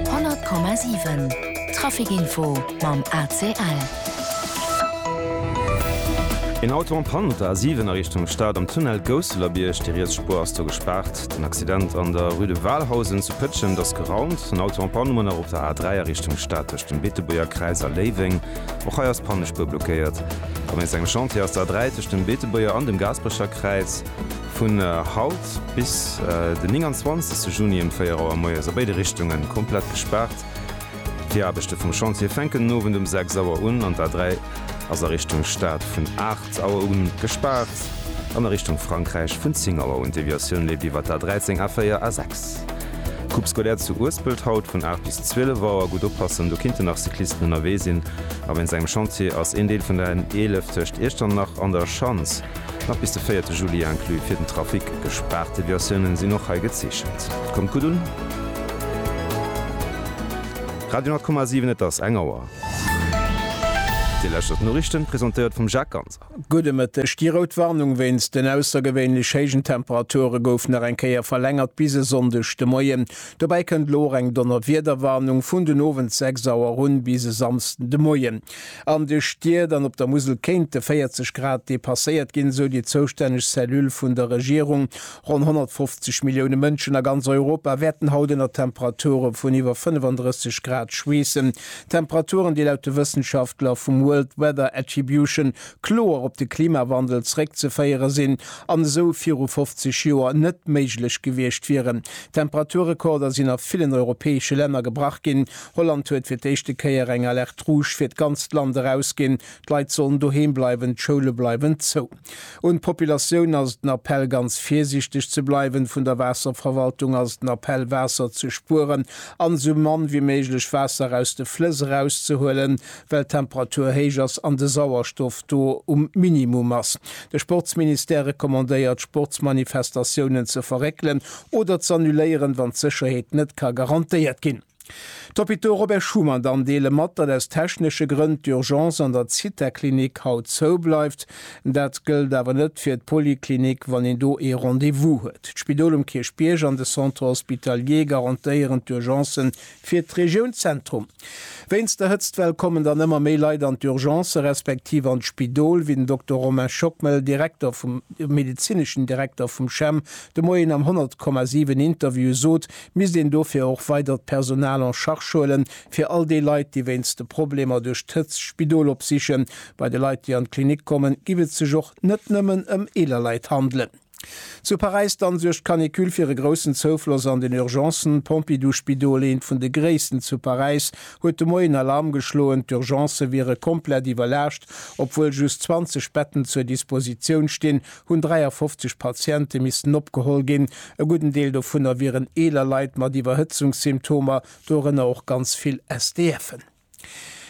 100,7 Trafic Info mam ACL. Een Auto en Panne op der A7 a Richtung Stad am Tunnel Gousselerbierg. Déi riets Spuer ass do gespaart. Den Accident an der Rue de Walhausen zu Pëtschent ass geraumt. En Auto en Panne um Ënnerop der A3 a Richtung Stad tëscht dem Beetebuerger Kräiz a Léiweng. Och hei ass d'Pannespuer blockéiert. Wéinst engem Chantier ass d'A3 tëscht dem Beetebuerger an dem Gaasperecher Kräiz vun haut. Spuergart bis den 29 Juni ëm 4 Auer moies a béide Richtunge komplett gespaart. D'Viraarbechte vum Chantier fänken den Owend um 6 Auer un an d'A3 ass a Richtung Stad vun 8 Auer u gespaart an a Richtung Frankräich vun 10 Auer un. D'Deviatioun leeft iwwer d'A13, A4, A6. Groupe scolaire zu Uespelt haut vun 8 bis 12 Auer. Gutt oppassen, do kinnten nach Cyclisten ënnerwee sinn a wéinst engem Chantier ass een Deel vun der N11 tëscht Iechternach an der Schanz Nach bis de véierte Juli inclus fir den Trafic gespaart. Deviatiounen sinn och hei gezeechent. Kommt gutt un. Radio 10,7 Et ass eng Auer. Dir lauschtert d'Noriichten, presentéiert vum Jacques Ganser. Gudde Mëtteg. Déi rout Warnung wéinst den aussergewéinlech héijen Temperature gouf nach eng Kéier verlängert bis e Sonndeg de Moien. Dobäi kënnt elo och eng Donnerwiederwarnung vun den Owend 6 Auer un bis e Samsden de Moien. An de Stied an op der Musel kéinte 40 Grad depasséiert ginn, esou déi zoustänneg Cellule vun der Regierung. Ronn 150 Millioune Mënschen a ganz Europa wäerten haut ënner Temperature vun iwwer 35 Grad schweessen. Temperaturen, déi laut de Wëssenschaftler vum World Weather Attribution kloer op de Klimawandel zeréckzeféiere sinn an esou viru 50 Joer net méiglech gewiescht wieren. Temperaturrekorder sinn a villen europäesche Länner gebrach ginn, Holland huet fir d'éischte Kéier eng Alerte rouge fir d'ganzt Land erausginn. D'Leit sollen doheem bleiwen, d'Schoule bleiwen zou. Un d'Populatioun ass et en Appell, ganz virsiichteg ze bleiwen. Vun der Waasserverwaltung ass et en Appell, Waasser ze spueren an esou mann wéi méiglech Waasser aus de Flëss erauszehuelen, well d'Temperatur héich ass an de Sauerstoff do um Minimum ass. De Sportsministère recommandéiert, Sportsmanifestatiounen ze verréckelen oder z'annuléieren, wann d'Sécherheet net ka garantéiert ginn. D'Hôpitaux Robert Schuman dann deele mat, datt aus technesche Grënn d'Urgence an der Zithaklinik haut zou bleift. Dat gëllt awer net fir d'Poliklinik, wann een do ee Rendez-vous huet. D'Spidol um Kierchbierg an de Centre hospitalier garantéieren d'Urgence fir d'Regioun Zentrum. Wéinst der Hëtztwell kommen dann ëmmer méi Leit an d'Urgence respektiv an d'Spidol, wéi den Dokter Romain Schockmel, Direkter vum, medezineschen Direkter vum CHEM de Moien am 100,7 Interview sot. Misst een dofir och weidert Personal en charge huelen, fir all déi Leit, déi wéinst de Problemer duerch d'Hëtzt d'Spidol opsichen. Bei de Leit, déi an d'Klinik kommen, giff et sech och net nëmmen ëm eeler Leit handelen. Zu Paräis dann suergt d'Canicule fir e groussen Zoufloss an den Urgencen. D'Pompidou-Spidol, eent vun de gréissten zu Paräis, huet de Moien Alarm geschloen. D'Urgencë wiere komplett iwwerlaascht. Obwuel just 20 Betten zur Dispositioun stinn, hunn 53 Patiente missten opgeholl ginn. E gudden Deel dovunner wieren eeler Leit mat Iwwerhëtzungssymptomer, dorënner och ganz vill SDFen.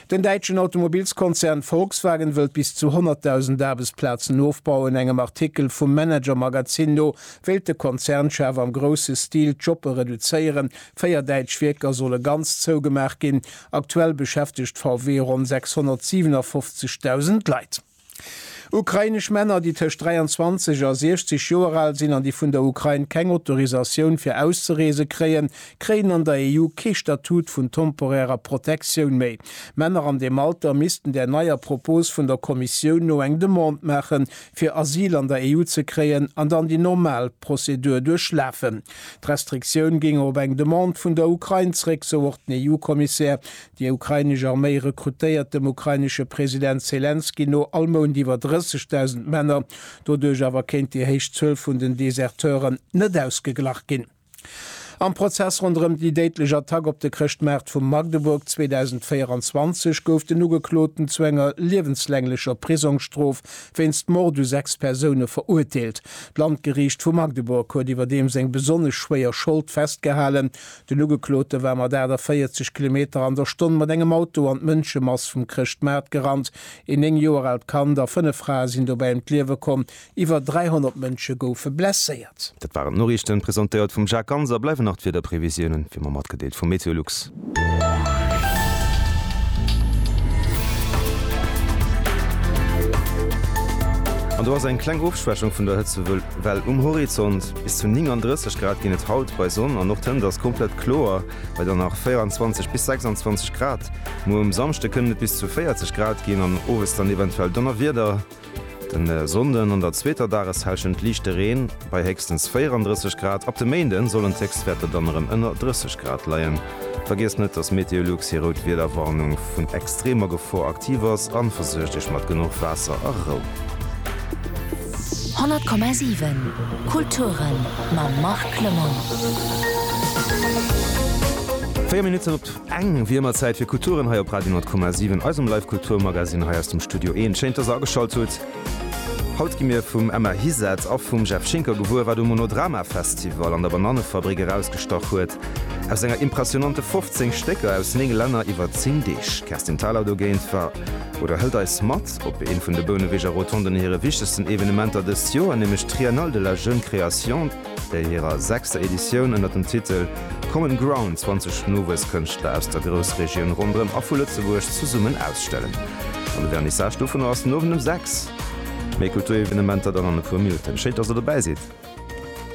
Den däitschen Automobilskonzern Volkswagen wëllt bis zu 100.000 Aarbechtsplazen ofbauen. Engem Artikel vum Manager-Magazin no wéilt de Konzernchef am grousse Stil d'Joppe reduzéieren. Véier däitsch Wierker solle ganz zougemaach ginn. Aktuell beschäftegt VW ronn 657.000 Leit. Ukrainesch Männer, déi tëscht 23 a 60 Joer al sinn an déi vun der Ukrain keng Autorisatioun fir auszereese kréien, kréien an der EU kee Statut vun temporärer Protektioun méi. Männer an deem Alter missten där neier Propos vun der Kommissioun no eng Demande maache fir Asyl an der EU ze kréien an dann déi normal Prozedur duerchlafen. D'Restriktioun géing op eng Demande vun der Ukrain zréck, sou och den EU-Kommissär Déi ukrainesch Arméi rekrutéiert dem ukrainesche President Selenskyj no all Mount iwwer 30.000 Männer. Doduerch awer kéint déi héich Zuel vun den Deserteuren net ausgeglach ginn. Am Prozess ronderëm déi déidlech Attack op de Chrëschtmaart vu Magdeburg 2024 gouf den Ugekloten zu enger liewenslänglecher Prisongsstrof wéinst Mord u sechs Persoune verurteelt. D'Landgeriicht vu Magdeburg huet iwwerdeems eng besonnesch schwéier Schold festgehalen, Den Ugeklote war mat 48 Kilometer an der Stonn mat engem Auto an d'Mënschemass vum Chrëschtmaart gerannt. Een néng Joer aalt Kand a fënnef Frae sinn dobäi ëm d'Liewe komm. Iwwer 300 Mënsche goufe blesséiert. Dat waren d'Noriichten, presentéiert vum Jacques Ganz. A bleiwen nach d'Wiederprevisiounen, wéi mer matgedeelt, vum MeteoLux. An do ass eng kleng Ofschwächung vun der Hëtzewell um Horizont. Bis zu 39 Grad ginn et haut bei Sonn an och d'Hënt ass komplett kloer bei dann nach 24 bis 26 Grad. Muer um Samschde kënnen et bis zu 40 Grad ginn an owes dann eventuell Donnerwieder. Den Sonnden an der zweeter Dageshälschent liichte Reen bei héchstens 34 Grad. Ab de Méinden sollen d'Héchstwäerter dann erëm ënner 30 Grad leien. Vergiesst net, dass MeteoLux hir rout Wiederwarnung vun extremer Gefor aktiv ass an versuergt iech mat genuch Waasser a Rou. 100,7 Kulturen mam Marc Lemon. Véier Minutten op eng, wéi ëmmer Zäit fir Kulturen hei op Radio 100,7, eisem Live-Kulturmagazine hei aus dem Studio Een. Schéin, dass der ageschalt hutt. Haut gi mir vum Emma Hiset a vum Jeff Schinker gewuer, wat um Monodrama Festival an der Banannefabrik erausgestach huet aus enger impressionante 15 Stécker aus 9 Länner iwwer 10 Deeg. D'Kerstin Thalau dogéint war oder hëlt eis mat op eent vun de Bouneweger Rotonden hire wichtegsten Evenementer dëst Joer, nämlech d'Triennale de la Jeune Création. Bei hirer sechster Editioun ënner dem Titel Common Ground 20 nowuess Kënschtler aus der Groussregioun ronderëm a vu Lëtzebuerg zesummen ausstellen. An de Vernissage dovunner ass den Owend um 6. Méi Kulturevenementer dann an e puer Minutten. Schéin dass der dobäi sidd!